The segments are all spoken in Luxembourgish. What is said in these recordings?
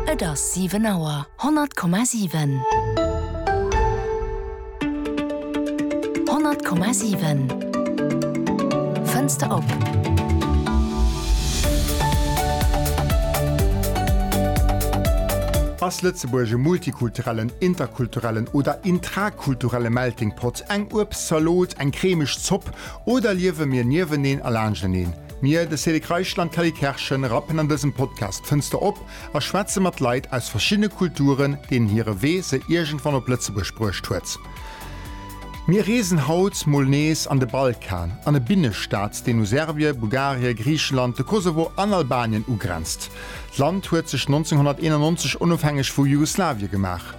Et ass 7 Auer. 100,7. 100,7. Fënster op. Ass Lëtzebuerg e multikulturellen, interkulturellen oder intrakulturelle Melting Pot, eng Uebstzalot, eng cremeg Zopp oder liewe mir nieweneen a laanschteneen? Mir, de Célic Reichel an d'Kelly Kerschen, rappen an dësem Podcast d'Fënster op a schwätze mat Leit aus verschiddene Kulturen, deenen hire Wee se iergendwann op Lëtzebuerg bruecht huet. Mir reesen haut mol nees an de Balkan, an e Binnestaat, deen u Serbie, Bulgarie, Griichenland, de Kosovo an Albanien ugrenzt. D'Land huet sech 1991 onofhängeg vu Jugoslawie gemaach.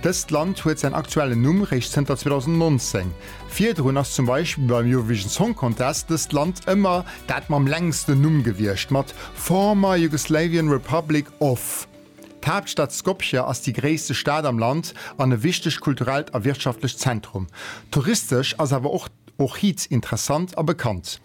Dëst Land huet säin aktuellen Numm réischt zënter 2019. Virdrun ass zum Beispill beim Eurovision Song Contest dëst Land ëmmer dat mam längsten Numm gewiescht, mat Former Yugoslavian Republic of. D'Haaptstad Skopje ass déi gréisste Stad am Land an e wichtegt kulturellt a wirtschaftlecht Zentrum. Touristesch ass awer och Ohrid interessant a bekannt.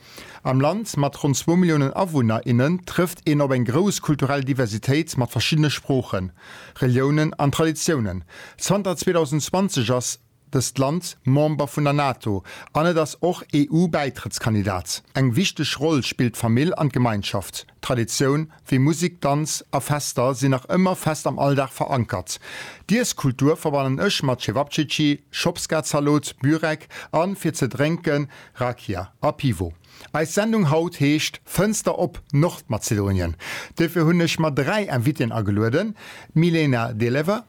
Am Land mat ronn zwou Milliounen Awunner, innen trëfft een op eng grouss kulturell Diversitéit mat verschiddene Sproochen, Reliounen an Traditiounen. Zanter 2020 ass. dëst Land Member vun der NATO an et ass och EU-Bäitrëttskandidat. Eng wichteg Roll spillt d'Famill an d'Gemeinschaft. Traditioun wéi Musek, Danz a Fester sinn nach ëmmer fest am Alldag verankert. D'Iesskultur verbannen ech mat Cevapcici, Schopskazalot, Bürek a fir ze drénken Rakia a Pivo. Eis Sendung haut heescht Fënster op Nordmazedonien. Duerfir hunn ech mer dräi Invitéen agelueden, d'Milena Delever,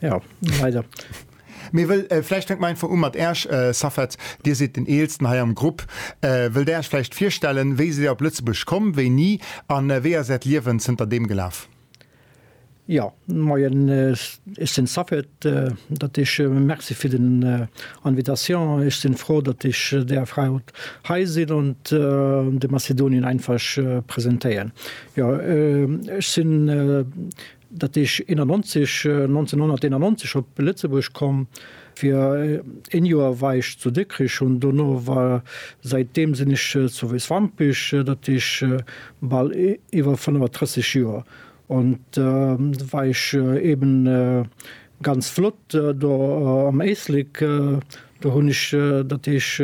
Ja, leider. Mee wëll, vläicht fänke mer einfach u mat Äech, Safed, Dir sidd den Eelsten hei am Grupp. Wëllt Där Äech vläicht virstellen? Wéi sidd Dir op Lëtzebuerg komm? Wéini? A wéi ass Äert Liewen zënter deem gelaf? Jo, Moien, ech sinn Safed. Dat heescht, Merci fir den Invitation. Ech sinn frou, datt ech däerf haut hei sinn an de Macedonien einfach presentéieren. Jo, ech sinn Dat eech 91, 1991 op Lëtzebuerg komm, fir een Joer war eech zu Dikkrich, hunn dono war, säit deem sinn ech zu Wéiswampich, dat eech bal iwwer 35 Joer. On war eech eben ganz flott do am Éislek, do hunn ech, dat eech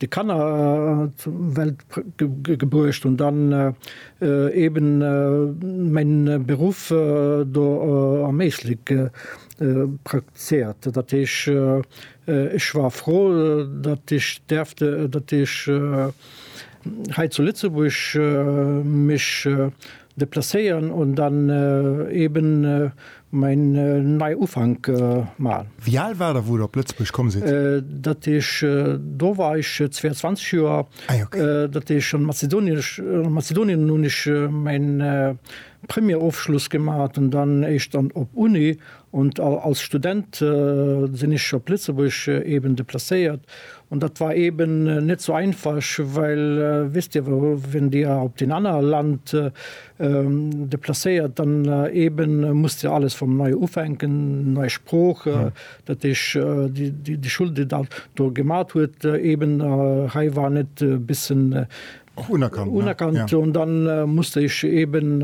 de Kanner zur Welt gebruecht hunn, dann eben mäin Beruff do am Éislek praktizéiert. Dat heesch ech war frou, datt ech däerft, datt ech hei zu Lëtzebuerg mech Deplacéieren und dann eben mein nei Ufank machen. Wéi al war der wou der op Lëtzebuerg komm sidd? Dat ech do war ech 22 Joer. Ah jo. Dat ech an Mazedonien ech an Mazedonien hunn ech mäin Premierofschluss gemaat an dann éischt dann op Uni Und als Student sin ech op Lëtzebuerg eben deplacéiert und dat war eben net so einfasch, well wisst dir wel, wenn dir op den anner Land deplacéiert, dann eben musst dir alles vum Neue ufänken, nei Sprooch, dat heesch déi Schule déi der do gemat huet eben hei war net bissen unerkannt und dann musst der eben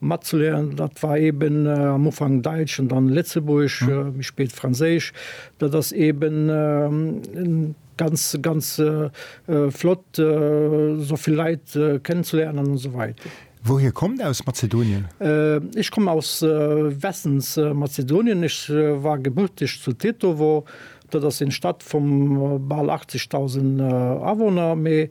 Matzeleeren, dat war eben am Ufank Däitsch an dann Lëtzebuergesch, méi spéit Franséisch. Dat ass eben ganz, ganz flott, esou vill Leit kennenzeléieren an esou weider. Wouhier kommt Dir aus Mazedonien? Ech kommen aus Westens Mazedonien. Ech war gebürteg zu Tetovo. Dat ass eng Stad vu bal 80.000 Awunner, mee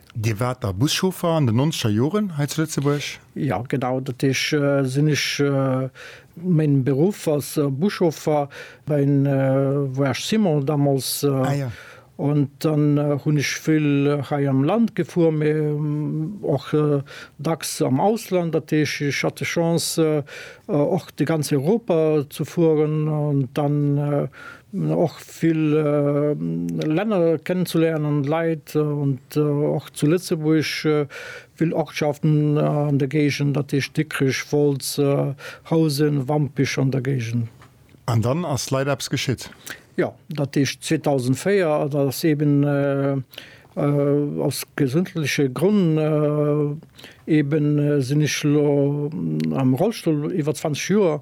Dir waart da Buschauffer an den nonzeger Joren hei zu Lëtzebuerg? Jo, genau, dat heesch sinn ech. Main Beruff ass Buschauffer bei en Voyage Simon damals. Ah ja. An dann hunn ech vill hei am Land gefuer, mä och dacks am Ausland. Dat heesch ech hat d'Chance och de ganz Europa ze fueren an dann och. vill Länner kennenzulernen an Leit an och zu Lëtzebuerg vill Ortschaften an der Géigend, dat heescht Dikrech, Wolz, Housen, Wampich an der Géigend. An dann ass leider eppes geschitt. Jo, dat heescht 2004, dat ass eeben aus gesundheitliche Grond, eeben sinn ech elo am Rollstull iwwer 20 Joer,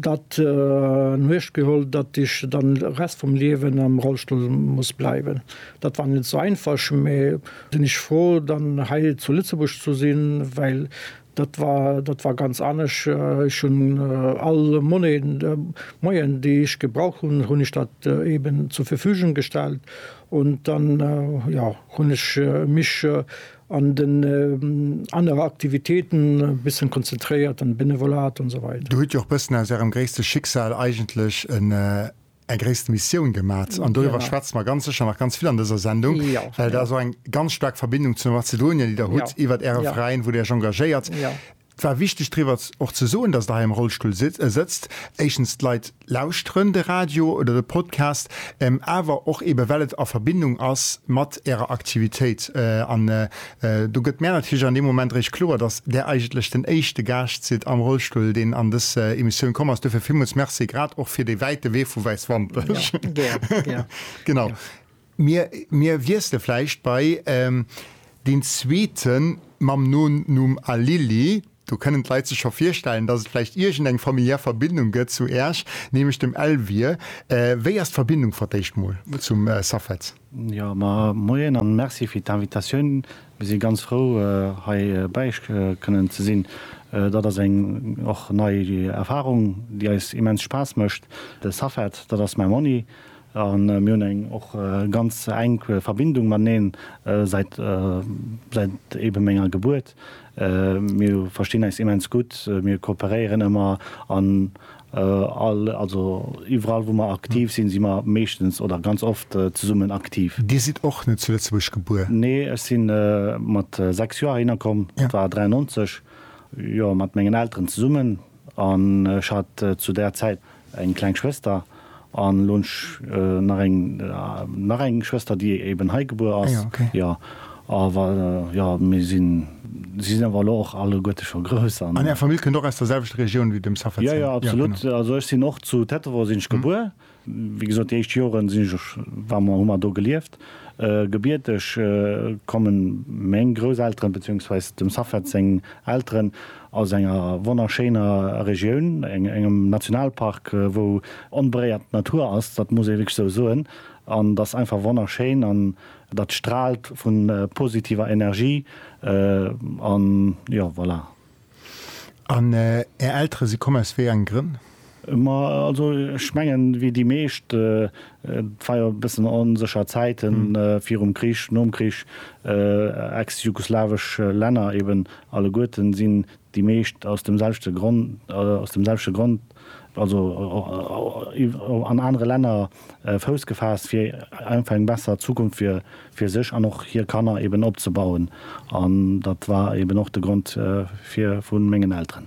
dat an Uecht geholl, datt ech dann de Rest vum Liewen am Rollstull muss bleiwen. Dat war net sou einfasch, mä sinn ech fro dann hei zu Lëtzebuerg ze sinn, well dat war dat war ganz anescht. Ech hunn all Monaien de Moyen déi ech gebraucht hunn, hunn ech dat eben zur Verfügung gestallt. Und dann jo hunn ech mech an den äh, anere Aktivitéiten e bëssen konzentréiert, an Benevolat an esou weider. Do hutt Dir och bëssen aus Ärem gréisste Schicksal eigentlech en äh, eng gréisst Missioun gemat, an doriwwer schwätze mer ganz sécher nach ganz vill an dëser Sendung, well dat ass och eng ganz staark Verbindung zu Mazedonien, déi Der hutt iwwert Äre Veräin, wou Der Iech engagéiert. Et war wichteg driwwer och ze soen, dass Der hei am Rollstull sëtzt. Éischtens, d'Leit lauschteren de Radio oder de Podcast, awer och eebe well et a Verbindung ass mat Ärer Aktivitéit. An do gëtt mär natierlech an deem Moment eréischt kloer, dass Där eigentlech den éischte Gaascht sidd am Rollstull, deen an dës Emissioun komm ass. Duerfir villmools Merci, grad och fir dee wäite Wee vu Wäiswampech. Genau. Mir, mir wiessle vläicht bei deen zweeten mam Nonumm Alili. Do kënnen d'Leit sech scho virstellen, dass et vläicht iergendeng familiär Verbindung gëtt zu Äerch, nämlech dem Elvir. Wéi ass d'Verbindung fir d'éischt mol zum Safed? Jo, ma moien an merci fir d'Invitatioun. Mir si ganz frou, hei bei Iech kënnen ze sinn. Dat ass eng och nei Erfahrung, déi eis immens Spaass mécht. De Safed, dat ass mäi Monni. A mir hunn eng och ganz enk Verbindung mateneen säit eebe menger Gebuert. Mir verstinn eis immens gutt, mir kooperéieren ëmmer an all, also iwwerall wou mer aktiv sinn, si mer meeschtens oder ganz oft zesummen aktiv. Dir sidd och net zu Lëtzebuerg gebuer? Nee, ech si mat 6 Joer heihinner komm, dat war 93, jo, mat mengen Elteren zesummen an ech hat zu där Zäit eng kleng Schwëster an elo nach eng nach eng Schwëster déi eben hei gebuer ass. Ah jo, okay. Jo awer jo mir sinn si sinn awer elo och alleguerte scho grouss an. An är Famill kënnt och aus der selwechter Regioun wéi dem Safetzin? Jo jo absolut. Jo genau. Also ech sinn och zu Tetterow sinn ech gebuer. Wéi gesot déi éischt Joren sinn ech och war mer hu mer do gelieft. Gebierteg kommen meng Grousselteren beziehungsweise dem Safed seng Elteren aus enger wonnerschéiner Regioun, engem Nationalpark, wou onberéiert d'Natur ass, dat muss ee wierklech esou soen. An dat ass einfach wonnerschéin an dat straalt vu positiver Energie. An jo, voilà. An Är Eltere si komm aus wéi engen Grënn? Ma also ech mengen, wéi déi meescht, et war jo e bëssen onsécher Zäiten virum Krich, nom Krich, ex-jugoslawesch Länner eben alleguerten sinn déi meescht aus dem selwechte Grond, aus dem selwechte Grond, also an anere Länner Fouss gefaasst, fir einfach eng besser Zukunft fir fir sech an och hir Kanner eben opzebauen. An dat war eben och de Grond fir vu mengen Elteren.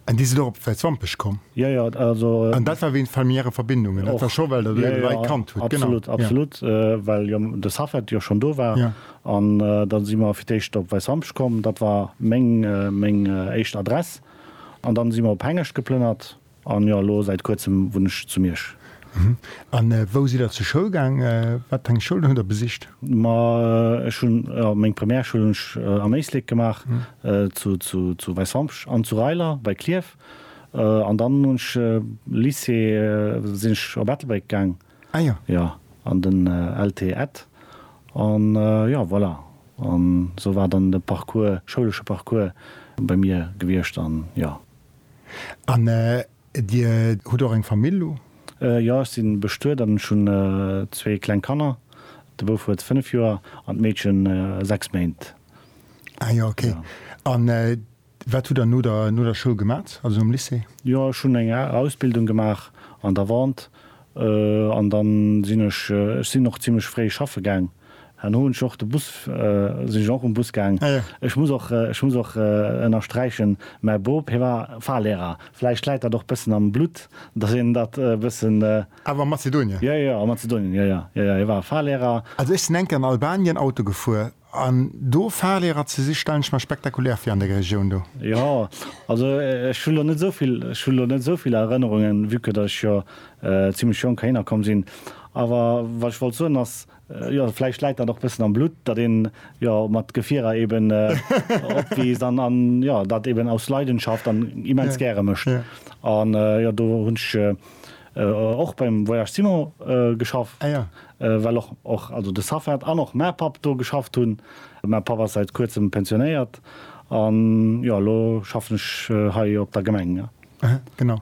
An déi sinn och op Wäiswampech komm? Jo, jo, also. An dat war wéint familiäre Verbindungen? Och. Dat war scho well der do eng Rei Kand hutt? Genau. Absolut, absolut. Ja. Well jo de Safed jo schonn do war. Ja. An da si mer fir d'éischt op Wäiswampech komm, dat war meng, meng éischt Adress. An dann si mer op Hengescht geplënnert. An jo, elo säit kuerzem wunn ech zu Miersch. An wou sidd der zur Schoul gaang? Wat eng Schoulen hutt der besicht? Ma ech hunn meng Primärschoul hunn ech an Éislek gemaach, zu Weißhampsch an zu Reiler bei Klierf. An dann hunn ech Lycée, sinn ech op Ettelbréck gaang, jo, an den LT Ed. An jo, voilà, an esou war dann de Parcours, schoulesche Parcours bei mir gewiescht, an jo. An Dir hutt och eng Famill elo? Jo, ech si bestuet an ech hunn zwee kleng Kanner. De Bouf huet 5 Joer an d'Meedchen 6 Méint. Ah jo, ok. A wat hutt Der no der Schoul gemat, also nom Lycée? Jo, ech hunn eng Ausbildung gemaach an der Vente an dann sinn ech, ech sinn och zimlech fréi schaffe gaang. Herno hun ech och de Bus, sin ech och um Bus gaang. Ech muss och, ech muss och ennersträichen, mäi Bop, hie war Fahrlehrer. Vläicht läit dat och bëssen am Blutt, dass een dat e bëssen. Awer a Mazedonien? Jo, jo, a Mazedonien, jo, jo, jo, jo, hie war Fahrlehrer. Also ech sin eng Kéier an Albanien Auto gefuer, an do Fahrlehrer ze si stellen ech mer spektakulär vir an der Regioun do. Jo, also ech hun lo net esou vill, ech hun lo net esou vill Erënnerungen, vue que dass ech jo zimlech jonk Héiner komm sinn. Awer wat ech wollt soen ass, jo vläicht läit dat och bëssen am Blutt, datt een jo mat Gefierer eben opwiisst an an jo dat eben aus Leidenschaft an immens gäre mécht. An jo do hunn ech och beim Voyage Simon geschafft, well och och also de Safed an och mä Papp do geschafft hunn. Mä Papp ass säit kuerzem pensionéiert an jo elo schaffen ech hei op der Gemeng. Genau.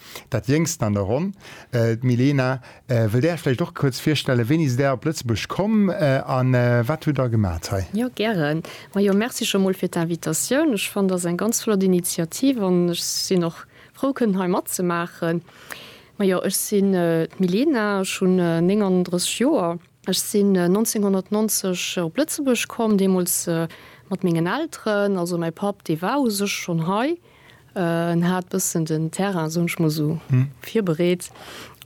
Dat jéngsten an der Ronn, d'Milena, wëllt Är Iech vläicht och kuerz virstellen. Wéini sidd Där op Lëtzebuerg komm a wat hutt Der gemaacht hei? Jo, gären. Majo, merci scho mol fir d'Invitatioun. Ech fannen, dat ass eng ganz flott Initiativ an ech sinn och frou kënnen hei matzemaachen. Majo, ech sinn d'Milena, ech hunn 39 Joer. Ech sinn 1990 op Lëtzebuerg komm, deemools mat mengen Elteren. Also mäi Papp, dee war u sech schonn hei. En hat bëssen den Terrain, soen ech mol esou, virbereet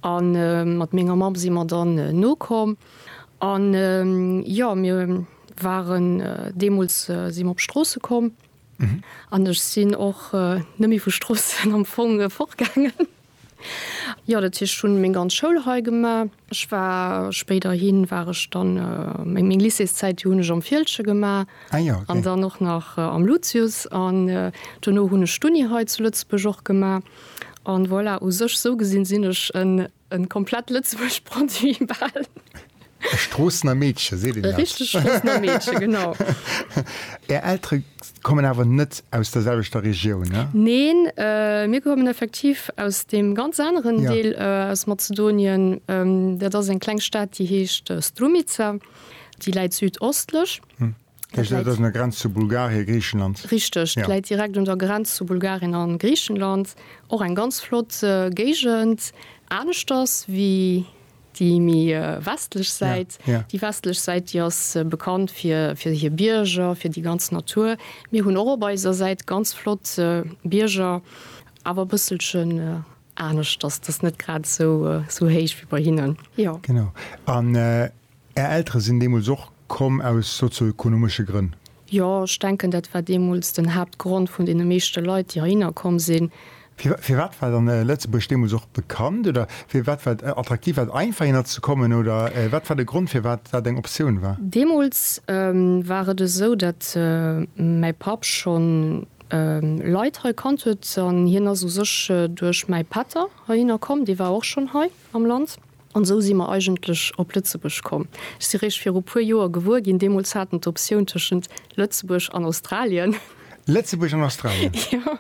a mat menger Mamm si mer dann nokomm. An jo, mir waren deemools, si mer op d'Stroosse komm an ech sinn och net méi vu Stroossen am Fong fortgaangen. Jo, dat heescht ech hunn meng ganz Schoul hei gemaach. Ech war spéiderhi war ech dann meng meng Lycéeszäit déi hunn ech am Fieldgen gemaach an dann och nach am Lucius an duerno hunn ech d'Uni hei zu Lëtzebuerg och gemaach. An voilà, u sech sou gesinn sinn ech en en komplett Lëtzebuerg Produit bal. E Stroossener Meedche, seet een dat? E richtegt Stroossener Meedche, genau. Är Eltere kommen awer net aus der selwechter Regioun, ne? Neen, mir kommen effektiv aus deem ganz aneren Deel aus Mazedonien. Dat ass eng kleng Stad, déi heescht Strumica. Déi läit südostlech. Dat heescht, dat ass un der Grenz zu Bulgarien, Griichenland? Richteg, dat läit direkt un der Grenz zu Bulgarien a Griichenland. Och eng ganz flott Géigend, aneschters wéi Déi méi westlech Säit, déi westlech Säit, déi ass bekannt fir, fir hir Bierger, fir déi ganz Natur. Mir hunn och op eiser Säit ganz flott Bierger, awer e bësselchen aneschters. Dat ass net grad esou, esou héich wéi bei hinnen, jo. Genau. An Är Eltere sinn deemools och komm aus sozioökonomesche Grënn? Jo, ech denken, dat war deemools den Haaptgrond vun deene meeschte Leit, déi heihinner komm sinn. Firwat war dann Lëtzebuerg deemools och bekannt oder firwat war et attraktiv? War et einfach, hinner ze kommen oder wat war de Grond, firwat dat eng Optioun war? Deemools war et esou, datt mäi Papp scho Leit hei kannt huet an hien ass u sech duerch mäi Pätter heihinner komm. Dee war och schonn hei am Land. An esou si mer eigentlech op Lëtzebuerg komm. Ech si réischt viru puer Joer gewuer ginn, deemools hat en d'Optioun tëschent Lëtzebuerg an Australien. Lëtzebuerg an Australien? Jo,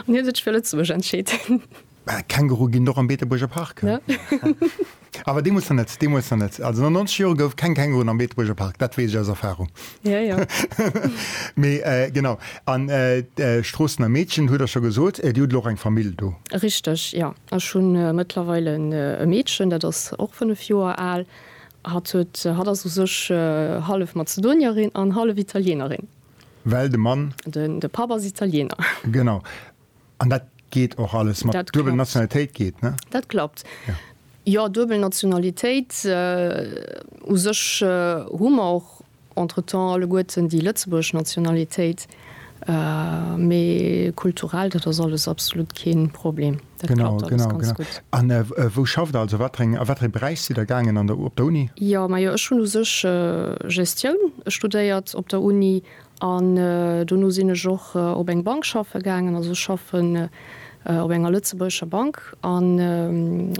an hie sech fir Lëtzebuerg entscheet. Känguru ginn et och am Beetebuerger Park. Awer deemools nach net, deemools nach net. Also no 90 Jore gouf keng Känguruen am Beetebuerger Park, dat weess ech aus Erfarung. Jo, jo. Mee genau, an Stroossen a Meedchen, hutt Der scho gesot, Dir hutt elo och eng Famill do? Richteg, jo. Ech hu mëttlerweil e Meedchen, dat ass och 5 Joer al. Hatt huet, hatt ass u sech hallef Mazedonierin an hallef Italienerin. Well de Mann. De Papp ass Italiener. Genau. An dat geet och alles mat duebel Nationalitéit geet, ne? Dat klappt. Jo, duebel Nationalitéit u sech hu mer och. Entretemps alleguerten déi lëtzebuergesch Nationalitéit, mee kulturell, dat ass alles absolut kee Problem. Dat klappt alles ganz gutt. Genau, genau. A wou schafft Der? Also wat fir ee Beräich sidd Der gaangen an der, op der Uni? Jo, majo, ech hunn u sech Gestioun studéiert op der Uni an dono sinn ech och op eng Bank schaffe gaangen. Also ech schaffen op enger lëtzebuergescher Bank an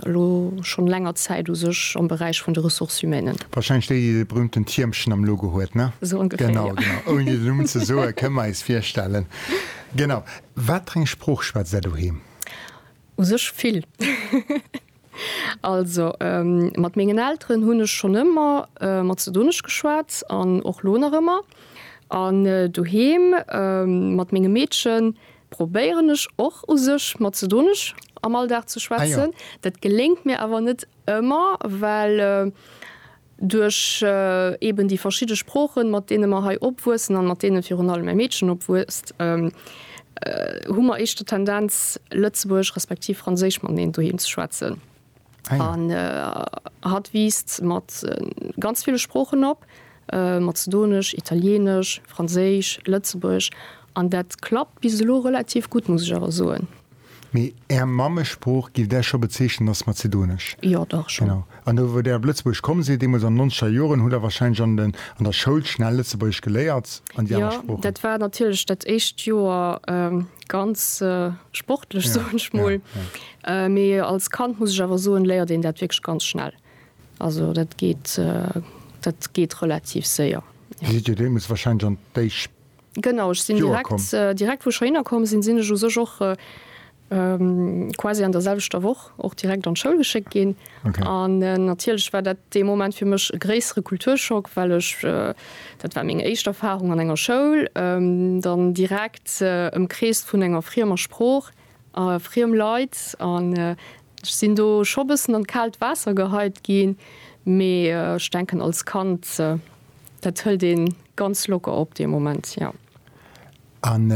elo schonn länger Zäit u sech am Beräich vun de Ressources humaines. Warscheinlech déi, déi de berühmten Tiermchen am Logo huet, ne? Esou ongeféier, jo. Genau, genau. Ouni den Numm ze soen, kënne mer eis virstellen. Genau. Wat fir eng Sprooch schwätzt Är doheem? U sech vill. Also mat mengen Elteren hunn ech schonn ëmmer Mazedonesch geschwat an och lo nach ëmmer. An doheem mat mengem Meedchen probéieren ech och u sech Mazedonesch am Alldag ze schwätzen. Dat geléngt mir awer net ëmmer, well. Duerch eben déi verschidde Sproochen, mat deene mer hei opwuessen an mat deene virun allem mäi Meedchen opwuesst, hu mer éischter d'Tendenz, Lëtzebuergesch respektiv Franséisch mateneen doheem ze schwätzen. An hatt wiisst mat ganz ville Sproochen op, Mazedonesch, Italieenesch, Franséisch, Lëtzebuergesch, an dat klappt bis elo relativ gutt, muss ech awer soen. Mee Är Mammesprooch, gifft Där scho bezeechnen, ass Mazedonesch? Jo, dach schonn. Genau. An do, wou Der op Lëtzebuerg komm sidd, deemools an den nonzeger Joren, hutt Der warscheinlech an den, an der Schoul schnell Lëtzebuergesch geléiert an déi aner Sproochen? Jo, dat war natierlech dat éischt Joer ganz sportlech, soen ech mol. Mee als Kand, muss ech awer soen, léiert een dat wierklech ganz schnell. Also dat geet, dat geet relativ séier. Dir sidd jo deemools warscheinlech an déi. Genau, ech sinn direkt wou ech heianer komm sinn, sinn ech u sech och quasi an der selwechter Woch och direkt an d'Schoul geschéckt ginn. An natierlech war dat dee Moment fir mech e gréissere Kulturschock, well ech dat war meng éischt Erfarung an enger Schoul, dann direkt ëmkreest vun enger friemer Sprooch. a friem Leit an ech sinn do scho bëssen an d'kaalt Waasser geheit ginn, mee ech denken als Kand dat hëlt een ganz locker op dee Moment, jo. An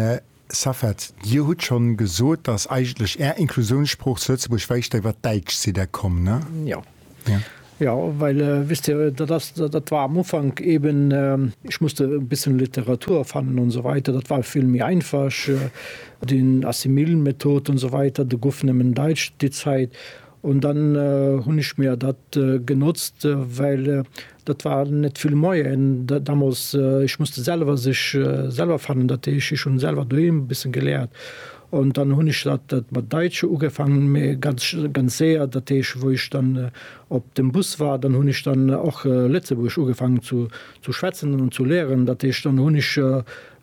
Safed, Dir hutt schonn gesot, dass eigentlech Är Inklusiounssprooch zu Lëtzebuerg wäicht ewert d'Däitsch, sidd Där komm, ne? Jo. Ja. Ja, well äh, wisst dir, äh, dat, das, dat, dat war am Ufank eben, äh, ich musste ein bisschen Literatur fannen und so weiter. Dat war vill méi einfach, äh, den Assimil-Method und so weiter, de gouf nëmmen Deitsch déi Zäit. Und dann äh, hunn ich mir dat äh, genotzt, äh, well äh, Dat war net vill Moyen damals. Ech musste selwer sech selwer fannen, dat heesch ech hunn selwer doheem e bëssen geléiert an dann hunn ech dat dat mat Daitsche ugefaangen, mä ganz ganz séier, dat heesch wou ech dann op dem Bus war, dann hunn ech dann och Lëtzebuergesch ugefaangen zu zu schwätzen an zu léieren. Dat heesch dann hunn ech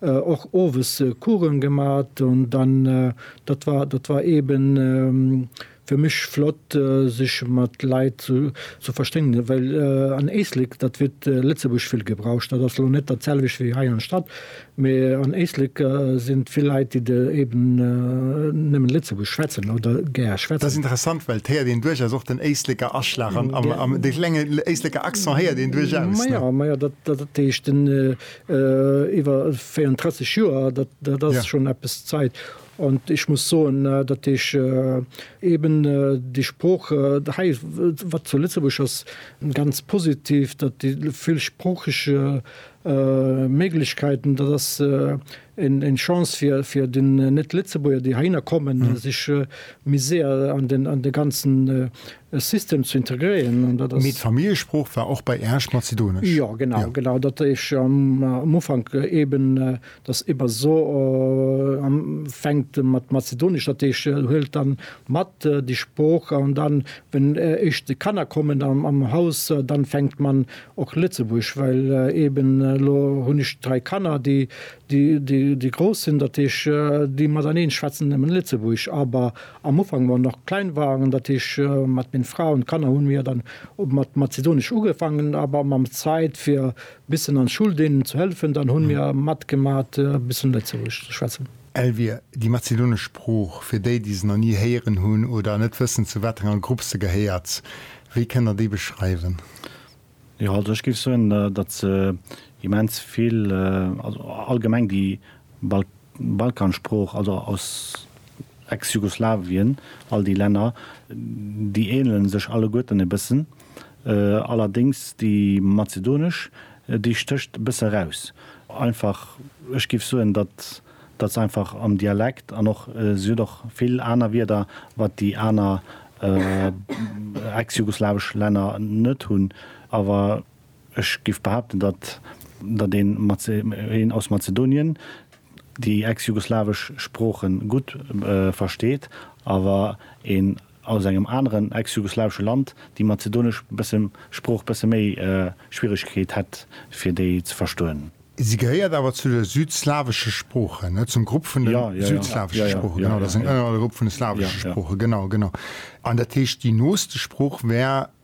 och owes Coursen gemat an dann dat war dat war eeben Fir mech flott sech mat Leit ze verstëngen, well an Éislek dat wird Lëtzebuerg vill gebraucht. Dat ass lo net dat selwecht wéi hei an Stadt, mee an Éislek sinn vill Leit déi de eben nëmmen Lëtzebuerg schwätzen oder gär schwätzen. Dat ass interessant, well et héiert een duerchaus och den Éisleker Aschlag an am dee klenge Éisleker Accent héiert een duerchaus. Maja, maja, dat heescht den iwwer 34 Joer, dat ass schonn eppes Zait. An ech muss soen, datt ech eeben déi Sprooch hei, wat zu Lëtzebuerg ass, ganz positiv, datt déi villsproocheg Méiglechkeiten, dat ass eng Chance fir den Net-Lëtzebuerger, déi heihinner kommen, sech méi séier an de ganze System ze integréieren. An dat ass. Mee d'Familljesprooch war och bei Äerch Mazedonesch? Jo, genau, genau. Datt ech am Ufank eeben Dass eber so am fänkt mat Mazedonisch, dat heescht huelt dann mat déi Sprooch an dann wenn eischt déi Kanner kommen am Haus dann fänkt man och Lëtzebuerg, well eben elo hunn ech 3 Kanner déi déi grouss sinn, dat heescht déi mateneen schwätzen nemmen Lëtzebuerg, awer am Ufank wou mer nach klein waren, dat heescht mat meng Fra an Kanner hunn mir dann mat Mazedonisch ugefangen, awer mam Zäit fir Bissen an Schul deenen ze hëllefen, dann hunn mir matgemaat e bëssen Lëtzebuergesch ze schwätzen. Elvire, Déi mazedonesch Sprooch, fir déi déi se nach ni héieren hunn oder net wëssen zu wat enger Grupp se gehéiert, wéi kënnt der déi beschreiwen? Jo, also ech géif soen, datt se immens vill, also allgemeng déi Balkansprooch, also aus Ex-Jugoslawien, all déi Länner, déi ähnelen sech alleguerten e bëssen. allerdéngs déi mazedonesch, déi stécht e bësse raus. Einfach, ech géif soen, datt datt se einfach am Dialekt an och, si huet och vill aner Wierder, wat déi aner ex-jugoslawesch Länner net hunn. Awer ech géif behaapten, datt datt een een aus Mazedonien déi ex-jugoslawesch Sprooche gutt versteet, awer een aus engem aneren ex-jugoslawesche Land, déi mazedonesch Sprooch bësse méi Schwieregkeet hätt, fir déi ze verstoen. Si gehéiert awer zu de südslawesche Sproochen, net zum Grupp vun de südslawesche Sproochen, genau, dat ass en ënnergrupp vun de slawesche Sproochen, genau, genau. An dat heescht, déi nooste Sprooch wär.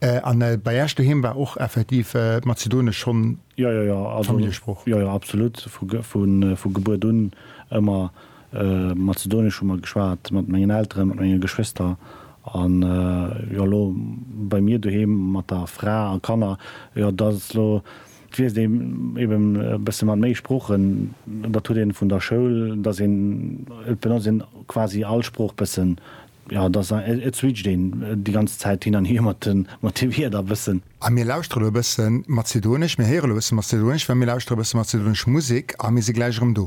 A bei Äech doheem war och effektiv d'Mazedonesch schonn d'Familljesprooch? Jo, jo, absolut. Vu Gebuert un ëmmer Mazedonesch hu mer geschwat, mat mengen Elteren, mat menge Geschwister. An jo, elo bei mir doheem mat der Fra a Kanner, jo, dat ass elo, et wiisst ee eben e bësse mat méi Sproochen. Dat huet ee vun der Schoul, dass een, et benotzt een quasi all Sprooch bëssen. Jo, et ass en, et switcht een déi ganz Zäit hin an hier mat de, mat de Wierder e bëssen. A mir lauschtere elo e bësse Mazedonesch, mir héiere elo e bësse Mazedonesch, well mir lauschtere e bësse mazedonesch Musek a mir si gläich erëm do.